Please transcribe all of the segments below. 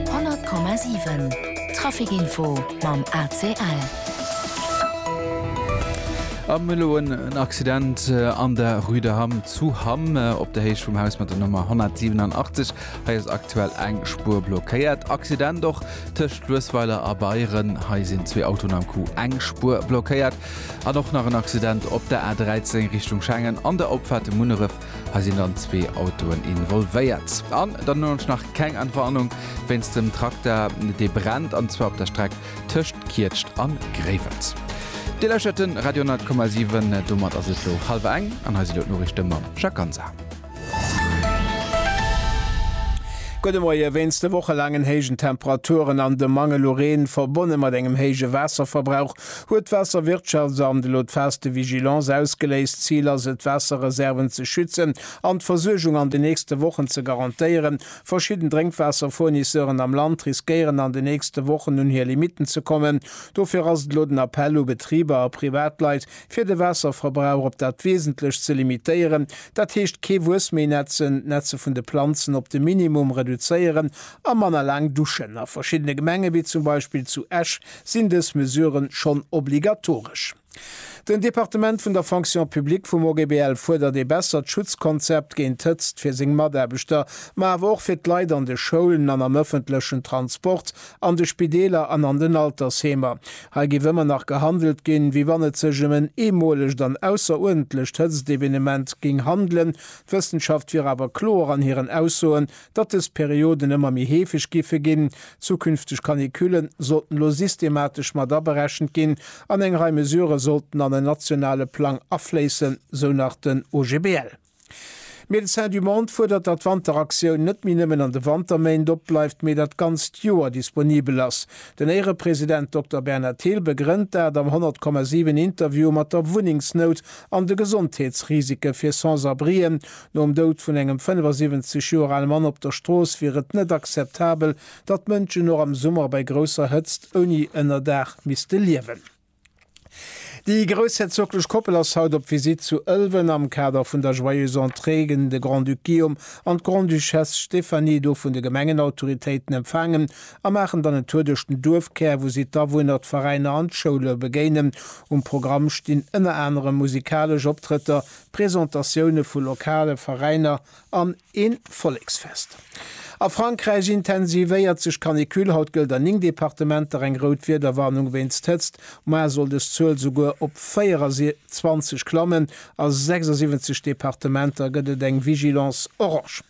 100,7 Traficinfo mam ACL. Am elo en Accident an der Rue de Hamm zu Hamm op der Héich vum Haus mat der Nummer 187. Hei ass aktuell eng Spur blockéiert. Accident och tëscht Luesweiler a Beieren. Hei sinn zwee Autoen am Coup, eng Spur blockéiert. An och nach en Accident op der A13 Richtung Schengen an der Opfahrt Munneref. Hei sinn dann zwee Autoen involvéiert. An dann hunn ech nach keng Entwarnung wéinst dem Trakter, dee brennt, an zwar op der Streck tëscht Kietscht a Gréiwels. Dir lauschert de Radio 10,7. Domat ass et elo hallwer eng an hei si elo d'Noriichte mam Jacques Ganser. Gudde Moie. Wéinst de wochelaangen héijen Temperaturen an dem Mangel u Reen, verbonne mat engem héije Waasserverbrauch, Huet d'Waasserwirtschaftsamt elo d'Phase de vigilance ausgeléist? D'Zil ass et, d'Waasserreserven ze schützen an d'Versuergung an den nächste Wochen ze garantéieren. Verschidden Drénkwaasserfournisseuren am Land riskéieren an den nächste Wochen un hir Limitten ze kommen. Dofir ass et elo den Appell u Betriber a Privatleit, fir de Waasserverbrauch op dat Wesentlech ze limitéieren. Dat heescht, kee Wuess méi nätzen, d'Nätze vun de Planzen op de Minimum reduzéieren a manner laang duschen. A verschiddene Gemenge wéi zum Beispill zu Esch Sinn dës Mesuren schonn obligatoresch? Den Departement vun der Fonction publique vum OGBL fuerdert ee bessert Schutzkonzept géint d'Hëtzt fir seng Mataarbechter, ma awer och fir d'Leit an de Schoulen an am ëffentlechen Transport, an de Spideeler an an den Altersheemer. Hei géif ëmmer nach gehandelt ginn, wéi wann et sech ëm en eemolegt an ausseruerdentlecht Hëtztevenement géing handelen. D'Wëssenschaft wier awer kloer an hiren Aussoen, Datt dës Perioden ëmmer méi heefeg giffe ginn, zukünfteg Canicullen sollten elo systematesch mat aberechent ginn an eng Rei Mesurë sollten an en nationale Plang afléissen, sou nach den OGBL. Médecins du Monde fuerdert, datt d'Wanteraktioun net méi nëmmen an de Wanterméint opbleift, mee dat ganzt Joer disponibel ass. Den Éierepresident Dokter Bernhard Thill begrënnt dat am 100,7 Interview mat der Wunnengsnout an de Gesondheetsrisike fir Sans-abrien, Nom Doud vun engem 75 Joer ale Mann op der Strooss wier et net akzeptabel, datt Mënschen och am Summer bei grousser Hëtzt ouni Ënnerdaach misste liewen. Déi groussherzoglech Koppel ass haut op Visitt zu Ëlwen am Kader vun der Joyeuse Entrée ginn de Grand-Duc Guillaume an d'Grande-Duchesse Stéphanie do vun de Gemengenautoritéiten empfaangen a maachen dann en Tour duerch den Duerfkär, wou si d'Awunner, d'Veräiner an d'Schoule begéinen. Um Programm stinn ënner anerem musikalesch Optrëtter, Presentatioune vu lokale Veräiner an een Volleksfest. A Frankräich intensivéiert sech d'Canicule, haut gëllt an 9 Departementer eng rout Wiederwarnung wéinst Hëtzt. Moar soll des Zuel souguer op 24 klammen. A 76 Departementer gëtt et eng Vigilance orange.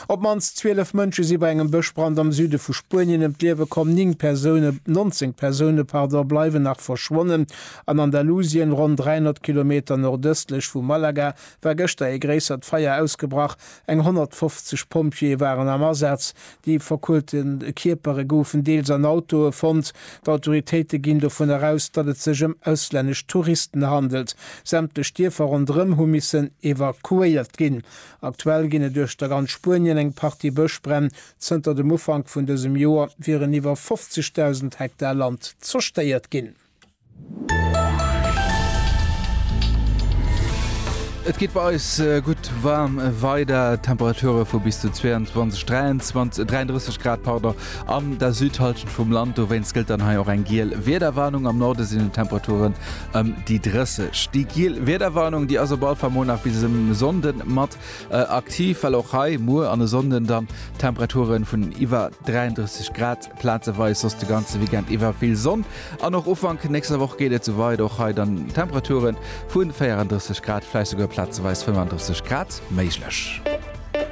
Op d'mannst 12 Mënsche si bei engem Bëschbrand am Süde vu Spuenien ëm d'Liewe komm, 9 Persoune, 19 Persoune, pardon, bleiwen nach verschwonnen. An Andalusien, ronn 300 Kilometer nordëstlech vu Malaga, war gëschter ee gréissert Feier ausgebrach. Eng 150 Pompjeeë waren am Asaz. Déi verkoelte Kierpere goufen deels an Autoe fonnt. D'Autoritéite ginn dovun eraus, datt et sech ëm auslännesch Touristen handelt. Sämtlech Dierfer ronderëm hu missen evakuéiert ginn. Aktuell ginn et uechter ganz Spuenien eng Partie Bëschbränn. Zënter dem Ufank vun dësem Joer wieren iwwer 50.000 Hektar Land zerstéiert ginn. Et geet bei eis gutt waarm weider, Temperature vu bis zu 22, 23, 33 Grad, pardon, an der Südhallschent vum Land. Dowéinst gëllt dann hei och eng giel Wiederwarnung. Am Norde sinn d'Temperature ëm déi 30. Déi giel Wiederwarnung, déi ass op alle Fall muer nach bis e Sonnden mat aktiv, well och hei muer an e Sonnden dann Temperaturen vun iwwer 33 Grad plazeweis, soss de ganze Weekend iwwer vill Sonn an och Ufank nächster Woch geet et sou weider. Och hei dann Temperaturen vun 34 Grad, vläicht souguer plazeweis 35 Grad méiglech.